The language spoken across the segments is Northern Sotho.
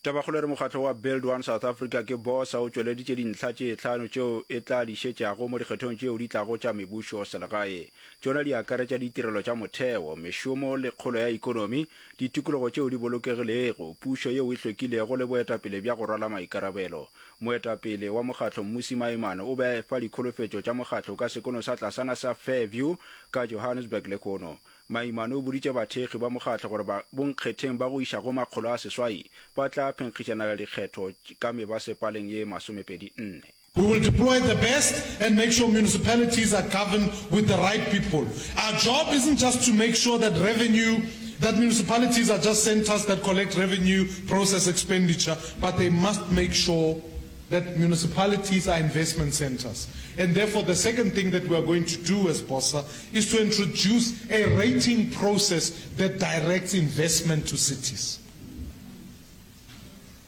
Tabakgolo e re mokgatlo wa Build One South Africa ke bosa o tšweleditše dintlha tše tlhano tšeo e tla di šetšago mo dikgethong tšeo di tlago tša mebušoselegae. Tšona di akaretša ditirelo tša motheo, mešomo le kgolo ya ekonomi, ditikologo tšeo di bolokegilego, pušo yeo e hlwekilego le boetapele bja go rwala maikarabelo. Moetapele wa mokgatlo Mmusi Maimane o be a efa dikholofetšo tša mokgatlo ka sekono sa tlasana sa Fairview ka Johannesburg lehono. Maimane o boditše bathekgi ba mokgatlo gore ba bonkgetheng ba go iša go makgolo a seswai ba tla phenkgišanela dikgetho ka mebasepaleng ye masomepedi nne. We will deploy the best and make sure municipalities are governed with the right people. Our job isn't just to make sure that revenue, that municipalities are just centres that collect revenue, process expenditure, but they must make sure that municipalities are investment centres. And therefore the second thing that we are going to do as Bossa is to introduce a rating process that directs investment to cities.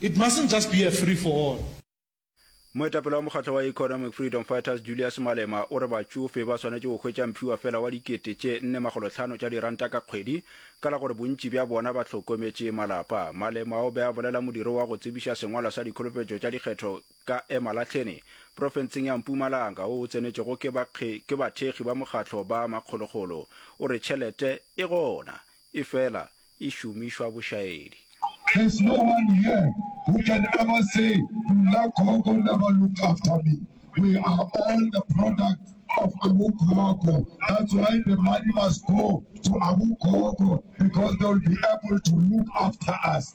It mustn't just be a free for all. Moetapele wa mokgatlo wa Economic Freedom Fighters Julius Malema o re batšofe ba swanetše go hwetša mphiwa fela wa dikete tše nne makgolo tlhano tša diranta ka kgwedi ka la gore bontši bja bona ba hlokometše malapa. Malema o be a bolela modiro wa go tsebiša sengwalwa sa dikholofetšo tša dikgetho ka Emalahleni, profenseng ya Mpumalanga, wo o tsenetšwego ke ba ke bathekgi ba mokgatlo ba makgolokgolo, o re tšhelete e gona, e fela e šomišwa bošaedi. There's no one here who can ever say nna gogo never looked after me, we are all the product of abu gogo, that's why the money must go to abu gogo because they will be able to look after us.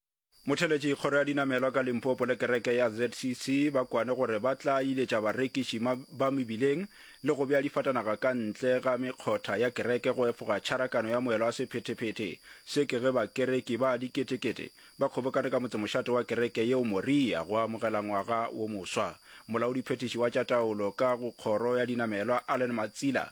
Motheletši kgoro ya dinamelwa ka Limpopo le kereke ya ZCC ba kwane gore ba tla iletša barekiši ma, ba mebileng le go bea difatanaga ka ntle ga mekgotha ya kereke go efoga tšharakano ya moelo wa sephetephete se ke ge bakereki ba diketekete ba kgobokane ka motsemošate wa kereke yeo Moria go amogela ngwaga wo moswa. Molaodiphethiši wa tša taolo ka go kgoro ya dinamelwa Allen Matsila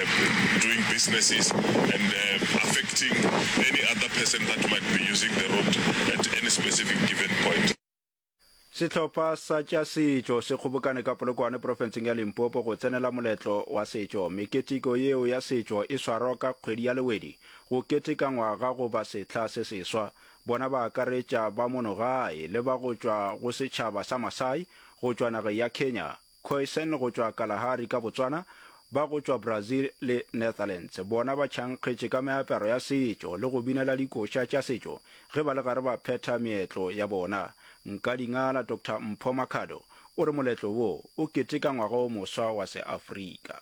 doing businesses and affecting any other person that might be using the road at any specific given point. Sehlopha sa tša setšo se kgobokane ka Polokwane profenseng ya Limpopo go tsenela moletlo wa setšo. Meketeko yeo ya setšo e swarwa ka kgwedi ya Lewedi go keteka ngwaga goba sehla se seswa. Bona ba akaretša ba mono gae le ba go tšwa go setšhaba sa Masai go tšwa nageng ya Kenya. Kooijsen go tšwa Kalahari ka Botswana, ba go tšwa Brazil le Netherlands bona ba tšhankgetše ka meaparo ya setšo le go binela dikoša tša setšo ge ba le gare ba phetha meetlo ya bona. Nkadingala Doctor Mpho Makhado o re moletlo wo o keteka ngwaga o moswa wa Seafrika.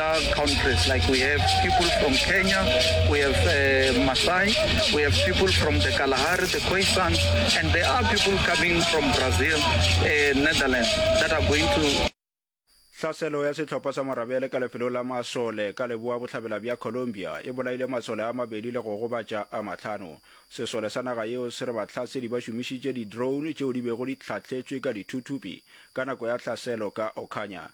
Hlaselo ya sehlopha sa marabele ka lefelong la Masole ka leboa-bohlabela bja Colombia e bolaile masole a mabedi le go gobatša a mahlano. Sesole sa naga yeo se re bahlasedi ba šomišitše di-drone tšeo di bego di hlahletšwe ka dithuthupi ka nako ya hlaselo ka Ocaña.